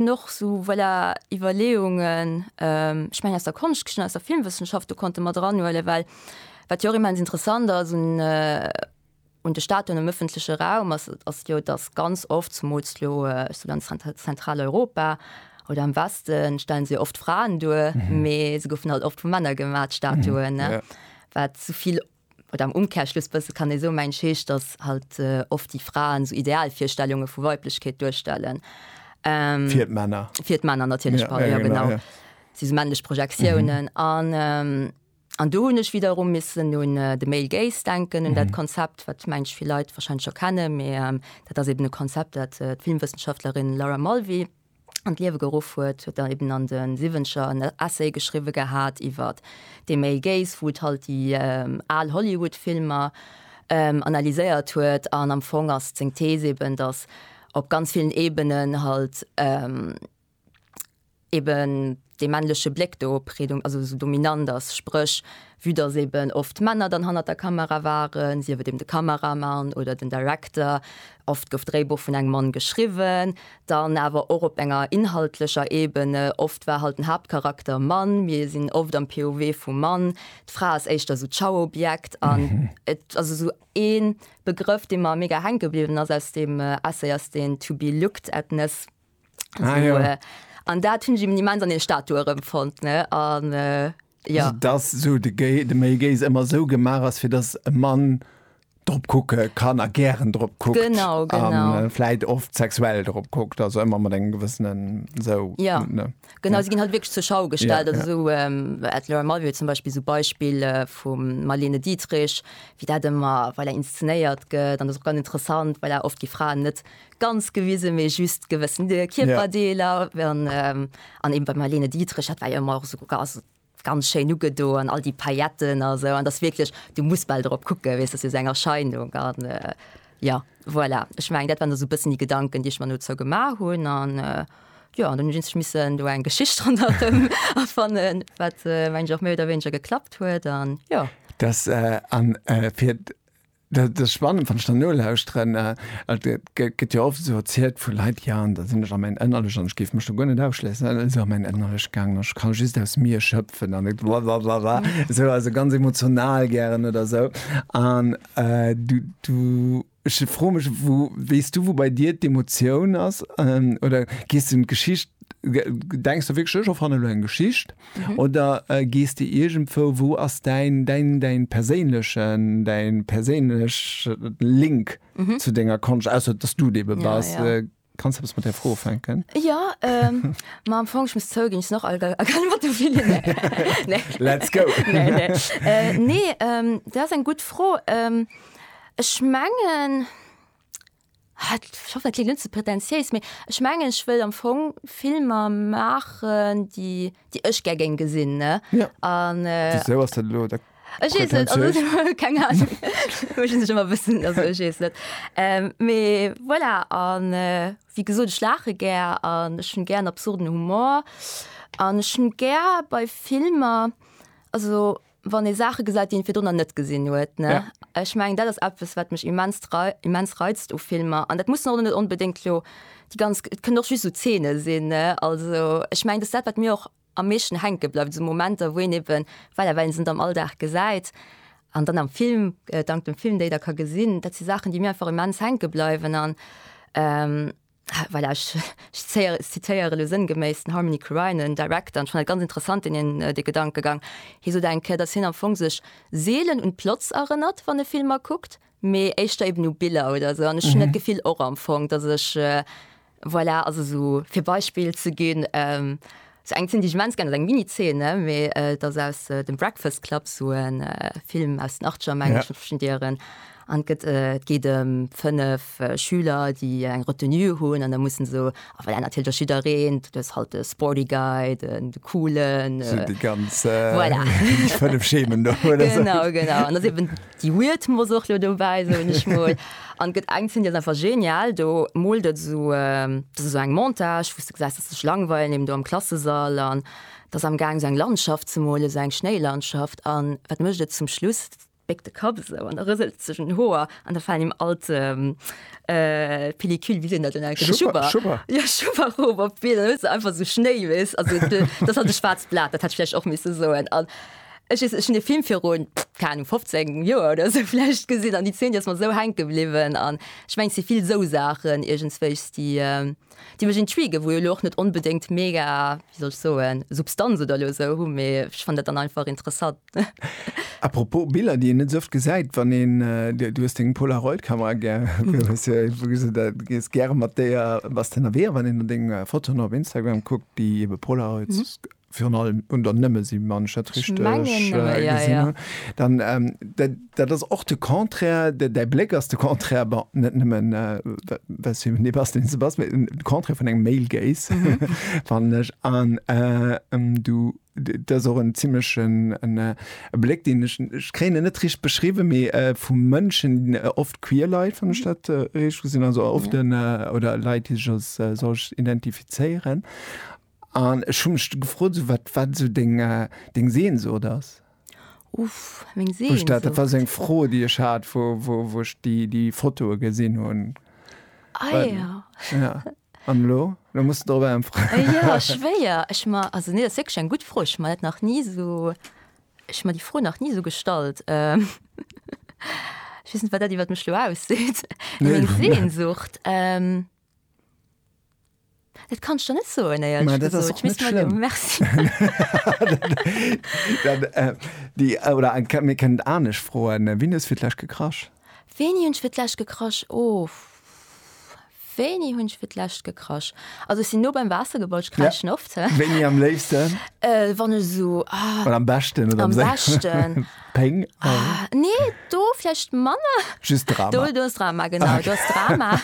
haten och esou voilà Iwwerleeungen, ech mengen aus der Konschtgeschicht an aus der Filmwëssenschaft, do konnte mat eranhuelen, well wat jo och immens interessant ass un un de Statuen am ëffentleche Raum ass, ass jo datt ganz oft, zemools elo esouguer an Zent Zentraleuropa oder am Weste stellen se jo oft Fraen duer, mee se goufen halt oft vu Männer gemaach d'Statuen, wat esouvill. Oder am Umkehrschluss bësse kann ee soen, mensch, heescht, dass halt oft déi Fraen esou Idealvirstellunge vu Weiblechkeet duerstellen. Fir d'Männer. Fir d'Männer natierlech, pardon, jo genau. Ja, ja, ja. Et si esou männlech Projektiounen. An do hunn ech wiederum missen un de Male Gaze denken, un dat Konzept, wat, mengen ech, vill Leit warscheinlech scho kennen, mee dat ass eeben e Konzept, dat d'Filmwëssenschaftlerin Laura Mulvey an d'Liewe geruff huet, huet der eben an de Siwwenzeger en Essay geschriwwe gehat iwwer dee Male Gaze, wou et halt déi al Hollywood-Filmer analyséiert huet. An am Fong ass seng Thees eben, datt op ganz villen Ebenen halt eben dee männleche Bléck do predom also esou dominant ass, spréch vue datt eben oft d'Männer dann hannert der Kamera waren, sief et eben de Kameramann oder den Director, oft gouf d'Dréibuch vun engem Mann geschriwwen, dann awer och op enger inhaltlecher Ebene, oft war halt den Haaptcharakter Mann, mir sinn oft am POV vum Mann, d'Fra ass éischter esou d'Schauobjekt an et ass esou ee Begrëff, dee mer mega hänke bliwwen ass aus deem Essay, ass deen to be looked at-ness. Ah, so, ja. äh, an dat hunn im Moment an den Statue erëmfond ne an äh, ja. Also, dass so de, Gay, de Male Gaze ëmmer so gemaach ass, fir dass e Mann drop kucke kann a gären drop kuckt. Genau, genau. An äh, vläit oft sexuell drop kuckt, also ëmmer mat engem gewëssenen so. Ja. Ne? Genau, sie ginn halt wirklich zur Schau gestellt. Ja, also so ähm, at Laura Mulvey zum Beispiel so Beispiel äh, vum Marlene Dietrich, wie dat immer, weil er inszeniert gëtt, an das ist auch ganz interessant, weil er oft die Frauen net ganz gewisen méi just gewëssen de Kierperdeeler an an eben bei Marlene Dietrich hat war jo ëmmer och sou gass ganz schéin ugedo an all déi Pailletten a sou an dass wierklech du muss bal drop kucke weess dass jo se eng Erscheinung an jo voilà ech meng dat waren der sou bëssen déi Gedanken déi ech mer dozou gemaach hunn an jo an dann hunn ech missen do eng Geschicht ronderëm erfannen wat mengt och méi oder wéineger geklappt huet an jo. Dass an fir Dat ass spannend, wann ech der nolauschteren. Et gëtt jo oft esou erzielt vu Leit, jo, an da sinn ech a mäin Ënnerlecht an ech géif mech do guer net ausschléissen, an dann si se a mäin Ënnerlecht gaangen an ech kann just aus mir schëpfen an et wa wa wa wa esou, also ganz emotional gären oder esou. An du, du, ech froe mech, wou, weess du, wou bei dir d'Emotioun ass? Oder gees du un d'Geschicht, gedenks de wierklech, ech erfanne lo eng Geschicht Oder gees de iergendwou, wou ass däin, däin, däin perséinlechen, däin perséinlechen Link zu denger Konscht, ausser dass du dee be bass? Ja, ja. Kanns eppes mat där Fro ufänken? Jo, ma am Fong, ech muss zouginn, ech sinn och alt a a kann iwwert de Willy, nee, nee. Let's go! Nee, nee. Nee, dat ass eng gutt Fro. Ech mengen. Schoffe klingt net ze pretentiéis, mee ech mengen ech wëll am Fong Filmer maachen, déi déi ech gär géing gesinn, ne? Ja. An. Wisou ass dat elo da. Ech weess net, also keng Ahnung. Ech sinn sech ëmmer e bëssen, also ech weess net. Mee voilà, an wéi gesot, ech laache gär an ech hunn gär absurden Humor an ech hunn gär bei Filmer, also wann ee Saache gesäit, déi ee virdrunner net gesinn huet. Ja. Ech meng, dat ass eppes, wat mech immens, immens reizt u Filmer. An dat muss och net onbedéngt lo déi ganz, et kënnen och just esou Zeene sinn. Also ech meng, dat ass dat, wat mir och am meeschten hänke bleift, esou Momenter, wou een eben, well awer een se net am Alldag gesäit an dann am Film, dank dem Film déi da ka gesinn. Dat si Saachen, déi mir einfach immens hänke bleiwen an. Voilà, ech zitéiere elo sënngeméiss den Harmony Korine, en Director, an ech fannen dat ganz interessant, deen hien, dee Gedankegang. Hie sot eng Kéier, datt hien am Fong sech seelen un d'Plots erënnert, wann e Filmer kuckt, mee éischter eben u Biller oder esou. An ech hunn dat Gefill och am Fong, datt ech, voilà, also esou fir Beispill ze ginn, Sou eng zénnt ech immens gär, dat ass eng Mini-Zeene, mee et ass aus dem Breakfast Club, sou e Film aus den Achtzeger, mengen ech, mat verschiddenen Dieren. An et gëtt, et geet ëm fënnef Schüler, déi eng Retenue hunn an da mussen se, a voilà, natierlech ass jiddereen, du hues halt de Sporty Guy, den Coolen, voilà. Déi ganz fënnef Schemen do. Genau, genau. An et ass eben Déi Weird muss och lo dobäi, soen ech mol. An gëtt eng Zeen, déi ass einfach genial, do moolt et esou, dat ass esou eng Montage, wou s de gesäis, dass se sech langweilen, eben do am Klassesall, an et ass am Gaang esou eng Landschaft ze molen, esou eng Schnéilandschaft, an wat mécht et zum Schluss? Et béckt de Kapp esou an da rëselt et sech un den Hoer an da falen him all d', d'Pellicule, wéi seet dat dann eigentlech? Schubber. Schubber. Jo, Schubber erof op d'Been, an da hues de einfach esou Schnéi, weess, also, dat ass halt e schwaarzt Blat, dat hätt ech vläicht och misse soen. An. Ech weess net, ech hunn dee Film virun, keng Ahnung, 15 Joer oder esou vläicht gesinn an déi Zeen, déi ass mer esou hänke bliwwen. An ech mengen, et si vill esou Saachen iergendswéis, déi, déi mech intriguë, wou jo elo och net onbedéngt mega, wéi soll ech soen, Substanz oder elo esou hu, mee ech fannen dat dann einfach interessant. Apropos Biller, déi een net esou oft gesäit, wann een, du hues deng Polaroid-Kamera gär, du hues jo iergendwou gesot, dat, du gees gäre mat déier, bass de ënnerwee. A wann een no denge Fotoen op Instagram kuckt, déi ebe Polaroids. virun allem un der nëmme si man dat richtig gesinn hun, dann dat ass och de Contraire, däi Bléck ass de Contraire, bon net nëmmen well s du eben dee bass, deen s du bass, mä den Contraire vun engem Male Gaze fannen ech. An du, dat ass och en zimlechen e Bléck, deen ech, ech kréien en net richtig beschriwwen, mee vu Mënschen, oft queer Leit, wann ech dat richtig gesinn hunn, also oft oder Leit, déi sech als solch identifizéieren, An ech hu mech du gefrot, esou wat wat esou deng deng Sehnsucht ass. Uff, meng Sehnsucht. Wou ech dat, dat war esou eng Fro déi ech hat, wou wou wou ech déi déi Fotoe gesinn hunn. Ah ja. Ja. An elo? Elo muss de drop äntweren. Jo, schwéier. Ech ma, also nee, dat ass wierklech eng gutt Fro. Ech hu mer dat nach ni esou, ech hu mer déi Fro nach ni esou gestallt. Ech weess net, wat dat iwwert mech elo ausseet. Meng Sehnsucht? Dat kanns de net soen, éierlech gesot. Ech misst mer de Merci. Oder eng Kéier, mir kënnen et anescht froen, Wien hues fir d'lescht gekrasch? Wéini hunn ech fir d'lescht gekrasch? Ohh, wéini hunn ech fir d'lescht gekrasch? Also ech sinn no beim Waasser gebaut, ech kraschen oft. Wéini am léifsten? Wann ech esou, ah. Oder am beschten oder am. Am beschten. Péng. Ah, nee, do vläicht manner. Just Drama. Do, do ass Drama, genau. Ah, okay. Do ass Drama.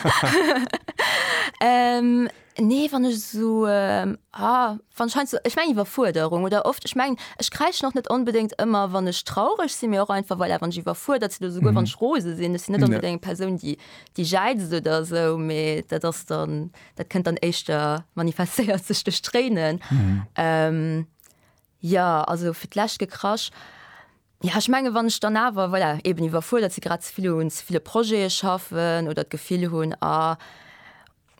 ähm, nee, wann ech so, ähm, ah, wann scheint so, ich meng Iwwerfuerderung oder oft, ich meng, ich kräich noch net unbedingt immer, wann ech traurig sinn, mir och einfach, voilà, wann ich iwwerfuerdert sinn, souguer mhm. wann ich rose sinn, ech sinn net unbedingt eng Persoun, die, die jeitzt oder so, mee dat ass dann, dat kënnt dann éischter manifestéiert sech durch Tränen. Mhm. Ähm, Jo, also fir d'lescht gekrasch. Jo, ech mengen, wann ech dann awer, voilà, eben iwwerfuerdert si, grad ze vill un ze ville Projete schaffen oder d'Gefill hunn, ah,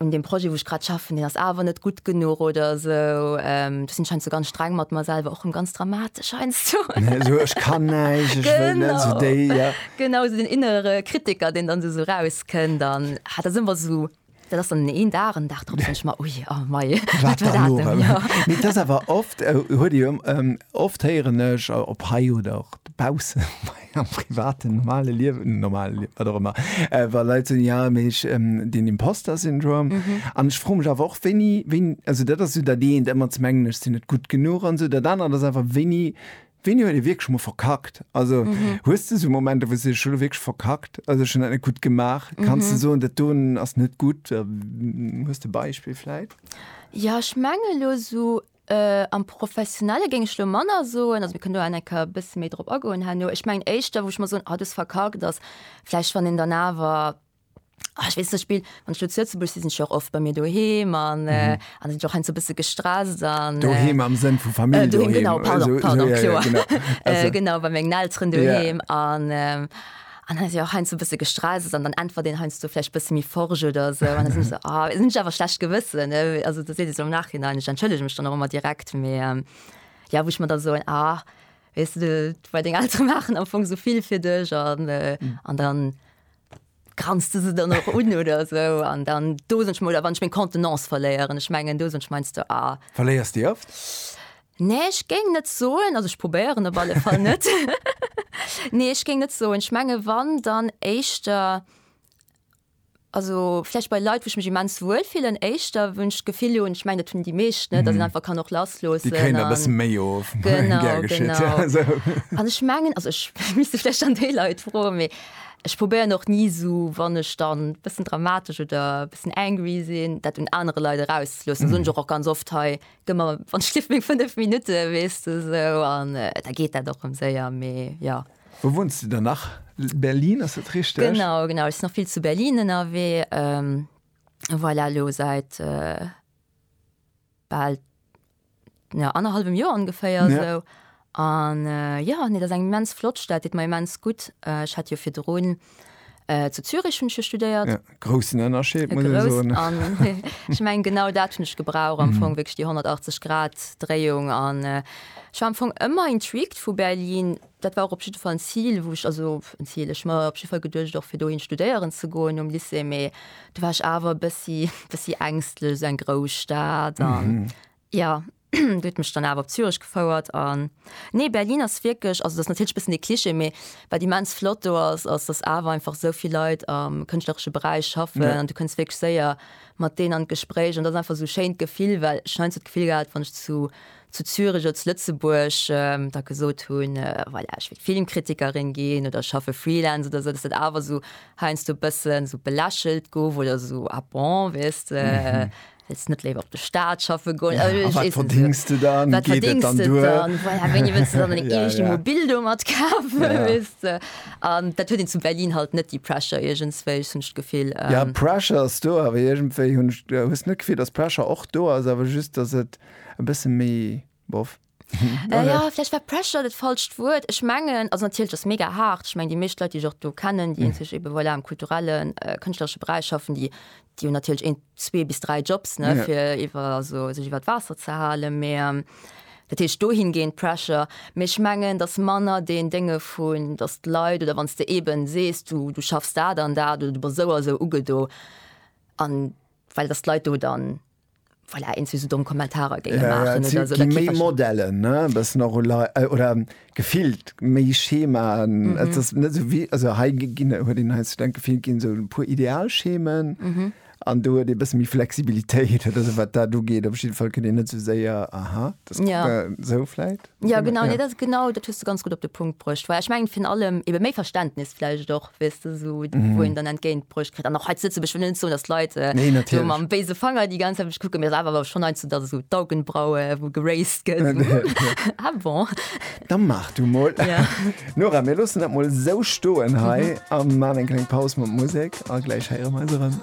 un deem Projet, wou ech grad schaffen, deen ass awer net gutt genuch oder esou. Do sinn ech heiansdo ganz streng mat mer selwer, och rëm ganz dramatesch heiansdo. Esou, ech kann näischt, ech wëll net, esou déi, ja. Genau, esou deen innere Kritiker, deen dann esou erauskënnt an, ah, dat ass ëmmer esou Dat ass dann een Dag, en Dag drop denken ech mer, ui, a mei, wat war dat elo? Mee et ass awer oft, huet ee jo oft, héieren ech op hei oder och dobaussen am privaten, normale Liewen, normale Liewen, wat och ëmmer, wa Leit soen, jo, mee ech den Imposter-Syndrom. An ech froe mech awer och, wéini, wéini, also dat ass esou dat eent, ëmmer ze mengen, ech sinn net gutt genuch an esou. Dat anert ass awer, wéini Wéini huet ee wierklech mol verkackt? Also hues de esou Momenter, wou s de deesch, ech hu lo wierklech verkackt, also ech hunn dat net gutt gemaach? Kanns de soen, dat doen ass net gutt? Hues de e Beispill vläit? Jo, ech menge lo esou am Professionelle géing ech lo manner soen, also mir kënnen do awer eng Kéier e bësse méi drop agoen herno. Ech mengen éischter, wou ech mol soen, ah du hues verkackt, ass vläicht, wann een dann awer Ah, ich wees Spiel wann zu Lützeburg si sind och oft bei mir doheem an äh, an sind och ein so bisse gestresst an Do heem am Sënn vu Famill Äh, do heem, genau, pardon, Also, pardon, ja, ja, kloer. genau. Also, äh, genau bei mengen Elteren doheem an ähm, an dann se och hein so bisse gestresst an dann entwer den heinst du vielleicht bisse mi forge oder so an sind so ah, sind ich awer schlecht gewissen ne? also du se am nachhinein ich entschëllege mich dann auch immer direkt me ähm, ja wo ich mir da so ein ah weißt du bei den Eltern machen am Fong so viel fir dech an äh, an dann Granst du se dann och un oder esou an dann dosen ech mol oder wann ech meng Contenance verléieren. Ech mengen dosen ech meinst du a. Verléiers déi oft? Nee ech géing net soen, also ech probéieren op alle Fall net. Nee ech géing net soen. Ech menge wann dann éischter also vläicht bei Leit wou ech mech immens wuel fillen éischter wou ech d'Gefill hunn, ech mengen dat hunn déi meescht net, datt een einfach kann och lassloossen an. Déi kréien der e bësse méi of. Genau, genau. An ech mengen, also ech misst vläicht dann déi Leit froen, mee Ech probéieren och ni esou, wann ech dann e bëssen dramatesch oder e bëssen angry sinn, dat un anere Leit erauszloossen. Dat soen ech och och ganz oft hei, Gëff mer, wann ech lief, meng fënnef Minutte, weess de esou. An da geet dat och rëm séier. Mee jo. Wou wunns de dann nach? Berlin, ass dat richteg? Genau, genau. Ech sinn nach vill zu Berlin ënnerwee. Voilà, elo säit bal ja, annerhallwem Joer ongeféier ja. esou. An äh, ja, nee, dat ass eng immens flott Stad, deet mer immens gutt. Äh, ech hat jo virdrun äh, zu Zürich hunn ech jo studéiert. Ja, groussen Ënnerscheed, muss ech soen. Ech meng, genau dat hunn ech gebraucht, am mhm. Fong wéinst déi 180 Grad Dréiung an äh, Ech war am Fong ëmmer intrigued vu Berlin, Dat war och op jidde Fall en Zil, wou ech, also en Zil, ech mer op jidde Fall geduecht och fir dohin studéieren ze goen nom Lycée, mee do war ech awer e bëssi, bëssi ängstlech, esou eng grouss Stad an jo, déi huet mech dann awer op Zürich gefouert an nee, Berlin ass wierklech, also dat ass natierlech e bëssen e Klischee, mee wat immens flott do ass, ass dass awer einfach esou vill Leit am kënschtleresche Beräich schaffen an du kënns wierklech séier mat deenen an d'Gespréich an dat ass einfach esou e schéint Gefill, well ech hunn heiansdo d'Gefill gehat, wann ech zu zu Zürich oder zu Lëtzebuerg da gesot hunn, voilà, ech wéilt Filmkritikerin ginn oder ech schaffe Freelance oder esou, dass dat awer esou heiansdo e bësse sou belächelt gouf oder esou, ah bon, weess de, wëlls net léiwer op de Staat schaffe goen? A wat verdéngs de dann? Wat verdéngs de dann? Voilà, wéini wëlls de dann deng eegt Immobil do mat kafen, weess de? An dat huet een zu Berlin halt net, déi Pressure iergendswéi, ech hunn d'Gefill. Jo, Pressure ass do, awer iergendwéi hunn ech, hues de net d'Gefill, dass Pressure och do ass, awer just, dass et. e bësse méi bof. Jo, vläicht war Pressure dat falscht Wuert. Ech mengen, also natierlech ass mega haart. Ech mengen, déi meescht Leit, déi ech och do kennen, déi eenzeg ebe voilà am kulturellen, kënschtleresche Beräich schaffen, déi hu natierlech een, zwee bis dräi Jobs, ne, fir iwwer, also sech iwwert d'Waasser ze halen. Mee dat heescht dohingehend Pressure. Mee ech mengen, dass manner deen Dénge vun, dass d'Leit oder wann s de eeben sees, du, du schaffs dat an dat oder du bass esou a esou ugedo an well dass d'Leit do dann, Voilà, eens wéi se domm Kommentarer géinge maachen oder esou. Et gi méi Modellen, e bëssen och oder gefillt méi Schemaen. Et ass net esou wéi, also hei ginn, huet een hei sech denke, gefillt ginn esou e puer Idealschemen an do huet ee bësse méi Flexibilitéit. Also wat dat ugeet, op jiddwer Fall kënnt een net esou séier, aha, dat kucke esou vläit. Ja genau, nee, dat ass genau, dat hues du ganz gutt op de Punkt bruecht. Well ech mengen virun allem ebe méi Verständnis vläicht och, weess de, esou wou een dann entgéint bruecht kritt. An och hei zu Lëtzebuerg, ech wëll net soen, datt d'Leit Nee, esou natierlech. mam béise Fanger déi ganz Zäit op mech kucken, mee et ass awer schonn heiansdo, datt esou d'Augenbraue wou geraised gëtt, esou hm, ah bon. Da maach du mol. Ja. Nora, mir loossen dat mol esou stoen hei a man eng kleng Paus mat Musek a gläich héiere mer eis erëm.